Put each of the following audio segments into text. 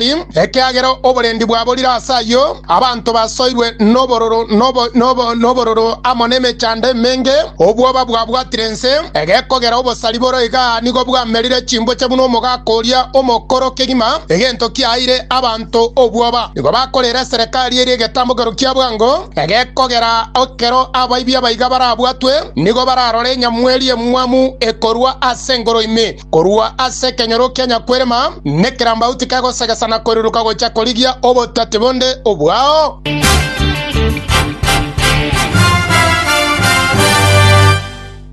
ekiagera oborendi bwaborire ase ayio, abanto basoirwe nobororo amo nemechando emenge, obwoba bwabwatire ense, egekogera obosari boro iga nigo bwamerire chimboche buna omogaka oria omokoro kegima, egento kiaeire abanto obwoba. Nigo bakorera eserekari eria egetambokero kia bwango, egekogera ekero abaibi abaiga barabwatwe nigo bararore enyamweri emwamu ekorwa ase engoro ime. Korwa ase ekenyoro kia nyakwerema nekerambaut kegosegesa na koiruruka gochia korigia obotwati bonde obwao.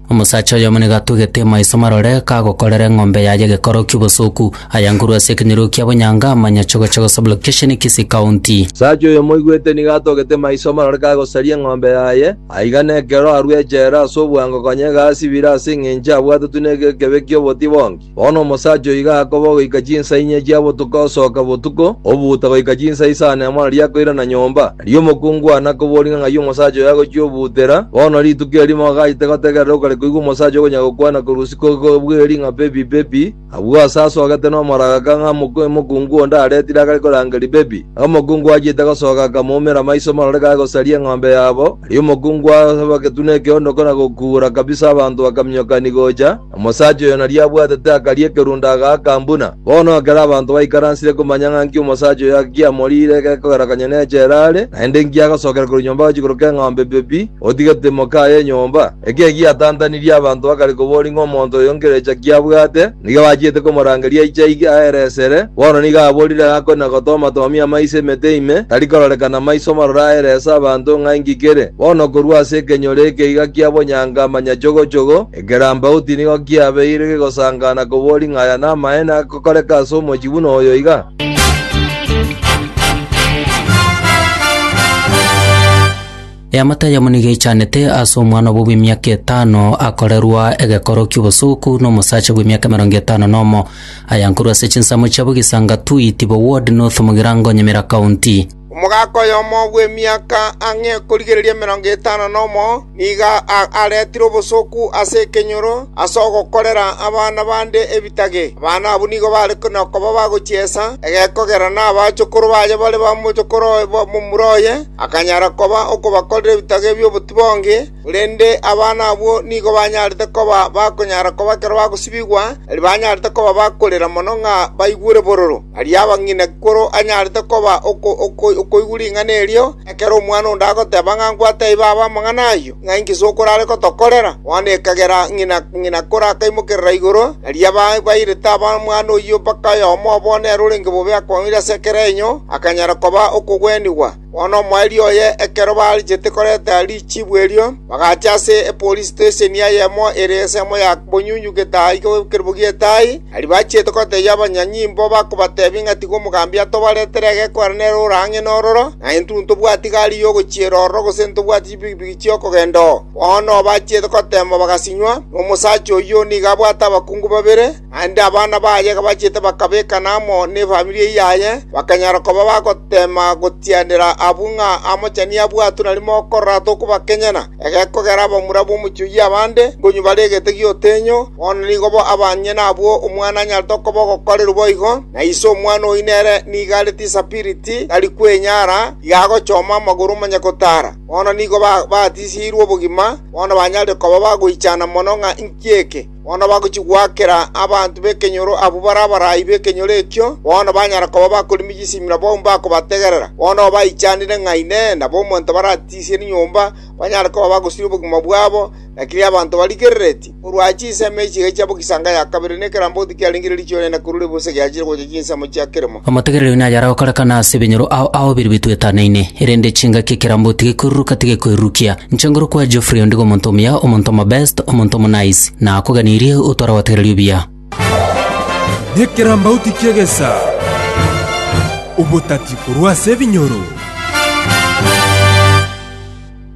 Omosacha oyomo nigo atugete maiso marore kagokorera eng'ombe yaye gekoro ki'obosoku, ayangurwe ase ekenyoro kia bonyanga amanya chogochego sublocation Kisii County. Omosacha oyomo oigwete nigo atogete maiso marore kagosaria eng'ombe yaye. Aiga nekero arue echela ase obwango konya igasibire ase engencho abwatetwe negekebe ki'oboti bonki. Bono omosacha oiga akoba ogoika chinsa inye chia botuko osoka botuko, obuuta goika chinsa isano emo nario akoirana nyomba. Erio omokungu one akobori ng'a ng'ai omosacha oyo agochia obuutera, bono rituko erimo agachete gotegerera ogokare koigwa omosacha okonya gokwana korwa isiko kobweri ng'a pepi pepi, Agwo aase asogete nomoragaka ng'a omokungu onde aretire agare koranga ribebi. Na omokungu achiete gosoka akamoumera amaiso morore gare gosaria eng'ombe yabo. Aria omokungu asaba getuna ekeondoko na gokuura kabisa abanto bakaminyokani gocha. Omosacha oyo nario abwatete akaria ekerundo agaaka buna. Bono ekero abanto baikaransire komanya ng'a nki omosacha oyo giamoriire gekogerekania nechela are, naende nki agosokera korwa nyomba gochia koroka eng'ombe bebi, Otigete mokaa y'enyomba? Ekio egiatantanirie abanto bakare koboria ng'a omonto oyo nkerecha ki abwate, nigo bachiete komorangeria aiche aige aere esere. Bono nigo aborire ng'a akore na gotomatomia amaiso emete ime, tari kororekana maiso marore aere ase abanto ng'a inki kere. Bono korwa ase ekenyoro eke iga kia bonyanga manyachogochogo, ekerambauti nigo kiabeire kegosangana koboria ng'a aya namaene agokoreka ase omochie buna oyo iga. Eamate eyemo nigo eichanete ase omwana obo bw'emiaka etano akorerwa egekoro ki'obosoku n'omosacha bw'emiaka emerongo etano nomo, ayankorwa ase chinsemo chiabo Gisanga Tui, Tibo Ward, North Mugirango, Nyamira County. Omogaka oyomo bw'emiaka ang'e ekorigereria emerongo etano nomo nigo a- aretire obosoku ase ekenyoro ase ogokorera abana bande ebitage. Abana abwo nigo bare ko- nokoba bagochiesa egekogera na abachokoro baye bare bamochokoro oye- ba- momura oye, Akanyara koba okobakorera ebitage bi'obotibonge, korende abana abwo nigo banyarete koba bakonyara koba ekero bagosibigwa, na ribanyarete koba bakorera mono ng'a baigure bororo. Aria abang'ina kikoro anyarete koba okoigwa ring'ana erio, ekero omwana onde agoteba ng'a nkwataibe abe amang'ana ayio. ng'a inki sokorare gotokorera? Bono ekagera ng'ina ng'ina kore akaimokerera igoro, nario ababairete abamwando oyio mpaka oyomo obo nere orenge bobe akomoira ase ekerenyo, akanyara koba okogwenigwa. Bono omoerio oye ekero barachete korenta richibu erio, bagacha ase epolisitesheni eyemo ere ensemo ya bonyunyu getaa iga bw'ekerubo gi'etai, aria bachiete gotebia abanyanyimbo bakobatebia ng'a tiga omogambi atobaretere egekwana nere ore ang'e nororo, na intwe ntobwati gari y'ogochiera ororo gose ntobwati chipikipiki chi'okogenda oo. Bono bachiete goteemwa bagasinywa, na omosacha oyio nigo abwate abakungu babere, naende abana baye bachiete bakabekana amo nefamiri eyio yaye, bakanyara koba bagoteema gotianera abwo ng'a amochani abwatwe na rimo okorora tokobakenyana. Egekogera abamura b'omochie oyio abande nkonywa bare egete gi'otenyo, bono nigo bo abang'ina abwo omwana anyarete okoba ogokorerwa boigo, na ise omwana oyio nere nigo arete esapiriti, tari kwenyara, iga agochoma amagoro onye gotaara. Bono nigo batiseirwe obogima, bono banyare koba bagoichana mono ng'a inki eke. Bono bagochia goakera abanto b'ekenyoro abwo bare abarai b'ekenyoro ekio, bono banyare koba bakorimia chisimero abwo mbakobategerera. Bono obaichanire ng'a Inee! Nabo omonto baratisie nyomba, banyare koba bagosiria obogima bwabo, Lakini abanto barigereretie korwa chinsemo echi egechia bo chianga ya kabere, ne ekeramboti kiarenge riicho rinene korwa ribusa giachire gocha chinsemo chia keremo. Amategere rero naye aragokorekana ase ebinyoro ao ao biria bitwetanaine, erende chingaki ekeramboti gekoiruruka tigekoirurukia. Nchenguru kwa Geoffrey ondigo omonto omuya, omonto omobest, omonto omonice, na akoganirie otware gotegereria obuya. Nekerambauti ki'egesa, obotati korwa ase ebinyoro.